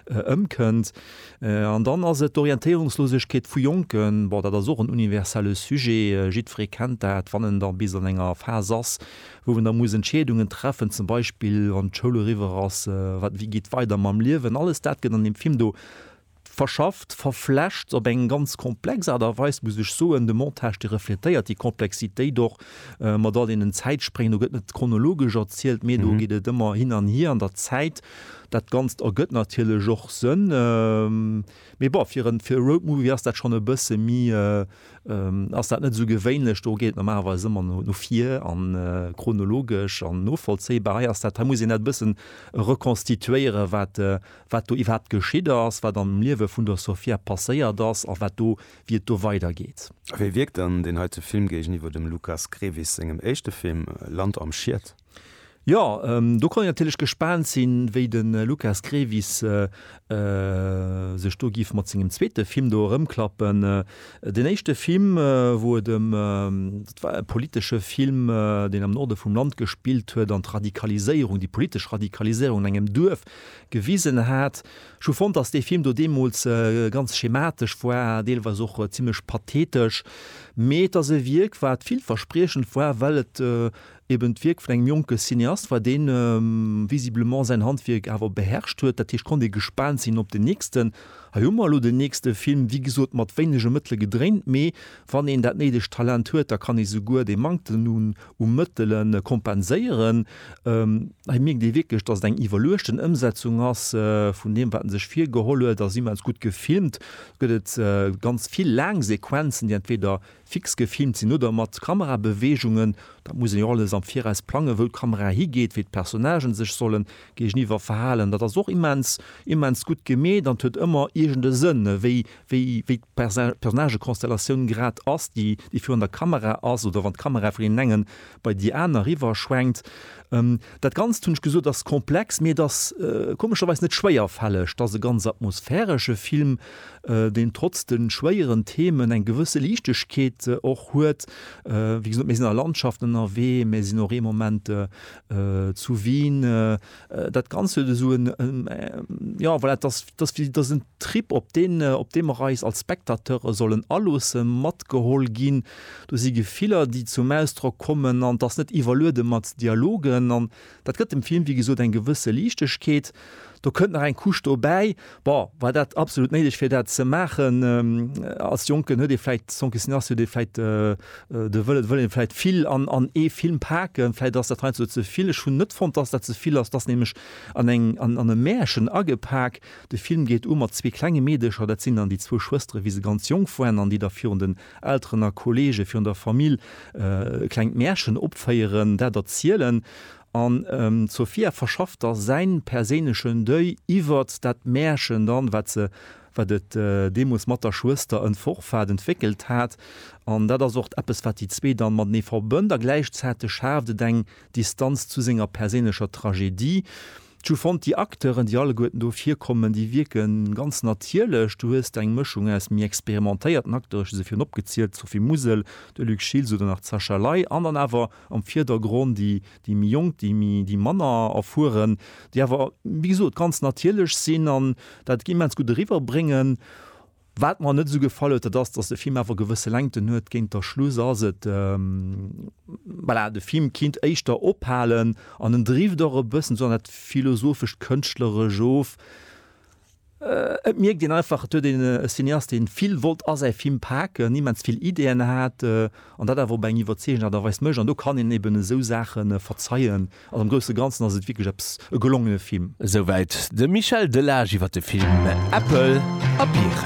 Ëmkënnt. An dann ass et d'Orientéierungslosegkeet vu Jonken. Bon, dat ass och en universelle Sujet. Jiddweree kennt dat, wann en da bis an enger Phas ass, wou en da muss Entscheedungen treffen, zum Beispill wann d'Schoul eriwwer ass, wat, wéi geet weider mam Liewen. Alles dat gëtt an deem Film do verschafft, verflecht op eng ganz komplex Aart a Weis, muss ech soen. De Montage, dee refletéiert déi Komplexitéit och mat all deenen Zäitspréngen. Do gëtt net chronologesch erzielt, mee do geet et ëmmer hin an hier an der Zäit. Dat Ganzt ergëtt natierlech och Sënn. Mee bon, fir e Road Movie ass dat schonn e bësse mi, ass dat net esou gewéinlech. Do geet et normalerweis ëmmer no vir a chronologesch an novollzéibar. Hei ass dat, hei muss een dat e bëssen reconstituéieren, wat, wat do iwwerhaapt geschitt ass, wat am Liewe vun der Sofia passéiert ass a wat do, wéi et do weidergeet. Wéi wierkt dann deen heite Film géigeniwwer dem Lukas Grevis sengem éischte Film Land am Schiet? Jo, do kann een natierlech gespaant sinn, wéi de Lukas Krevis sech do giff mat sengem zweete Film do erëmklappen. Deen éischte Film, wou et ëm, dat war e politesche Film, deen am Norde vum Land gespillt huet an d'Radikaliséierung, déi politesch Radikaliséierung an engem Duerf gewisen hat. Ech hu fonnt, datt dee Film do deemools ganz schematesch war, deelweis och zimmlech pathetesch, mee et ass e Wierk, wat villverspriechend war, well et Eben d'Wierk vun engem jonke Cineast war, dee visiblement säin Handwierk awer beherrscht huet. Dat heescht, konnt ee gespaant sinn op den nächsten. Hei hu mer elo den nächste Film, wéi gesot mat wéinege Mëttele gedréint, mee wann een dat néidegt Talent huet, da kann ee souguer dee Manktem u Mëttele kompenséieren. Hei mierkt ee wierklech, dass et eng iwwerluechten Ëmsetzung ass vun deem, wat en sech virgeholl huet. Et ass immens gutt gefilmt. Et gëtt ganz vill laang Sequenzen, déi entweder Fix gefilmt sinn oder mat Kamerabeweegungen, dat muss een jo alles am Viraus plangen, wou d'Kamera higeet, wéi d'Personnagen sech solle géigeniwwer verhalen. Dat ass och immens, immens gutt gemeet an et huet ëmmer iergend e Sënn, wéi, wéi, wéi d'Personnagekonstellatioun grad ass, déi, déi virun der Kamera ass oder wann d'Kamera vun deenen enge bei déi aner riwwerschwenkt. Dat Ganzt, hunn ech gesot, ass komplex, mee et ass komescherweis net schwéierfälleg. Et ass e ganz atmosphäresche Film. deen trotz de schwéieren Themen eng gewësse Liichtegkeet och huet. Wéi gesot, mir sinn a Landschaften ënnerwee, mir sinn och ee Moment zu Wien. Dat Ganzt huet esou en, jo voilà, et ass, et ass wéi, et ass en Trip, op deen, op dee mer eis als Spectateure sollen aloosse, matgeholl ginn. Do si Gefiller, déi zum Ausdrock kommen an et ass net iwwerluede mat Dialogen an Dat gëtt dem Film, wéi gesot, eng gewësse Liichtegkeet. Do kënnt nach eng Couche dobäi. Bon, war dat absolut néideg, fir dat ze maachen? Als Jonken huet ee vläicht, sans cinéaste, huet ee vläicht de Wëllen, et wëll ee vläicht vill an ee Film paken. Vläicht ass dat heiansdo ze vill. Ech hunn net fonnt, dass dat ze vill ass. Et ass nämlech an eng, an e Märchen agepak. De Film geet u mat zwee klenge Meedercher, dat sinn dann déi zwou Schwëstere wéi se ganz jonk waren an déi da virun den Elteren a Kolleege virun der Famill e klengt Märchen opféieren, dat erzielen an dem Sofia verschafft da säin perséinlechen Deuil iwwert dat Märchen dann, wat se, wat et deemools mat der Schwëster en Forfait entwéckelt hat. An dat ass och eppes, wat déi zwee dann matenee verbënnt a gläichzäiteg schaaft et eng Distanz zu senger perséinlecher Tragedie. Ech hu fonnt déi Acteuren, déi alleguerten do virkommen, déi wierke ganz natierlech. Du hues eng Mëschung aus méi experimentéierten Acteuren, ech hu se virun opgezielt, d'Sophie Musel, de Luc Schiltz oder nach d'Sascha Ley, an dann awer am Vierdergronn déi méi Jonk, déi manner erfueren, déi awer, wéi gesot, ganz natierlech sinn an dat immens gutt eriwwerbréngen. Wat mer net esou gefall huet, dat ass, dass de Film awer gewësse Längten huet. Géint der Schluss ass et, voilà, de Film kinnt éischter ophalen an en drift och e bëssen esou an dat Philosophescht-Kënschtleresch of. Et mierkt een einfach, et huet een e Cineast, dee vill wollt a säi Film paken, immens vill Ideeën hat an dat awer op eng iwwerzeegend Aart a Weis mécht. An do kann een eben esou Saache verzeien. Also am grousse Ganzen ass et wierklech eppes e gelongene Film. Esouwäit de Michel Delage iwwer de Film Äppel a Biren.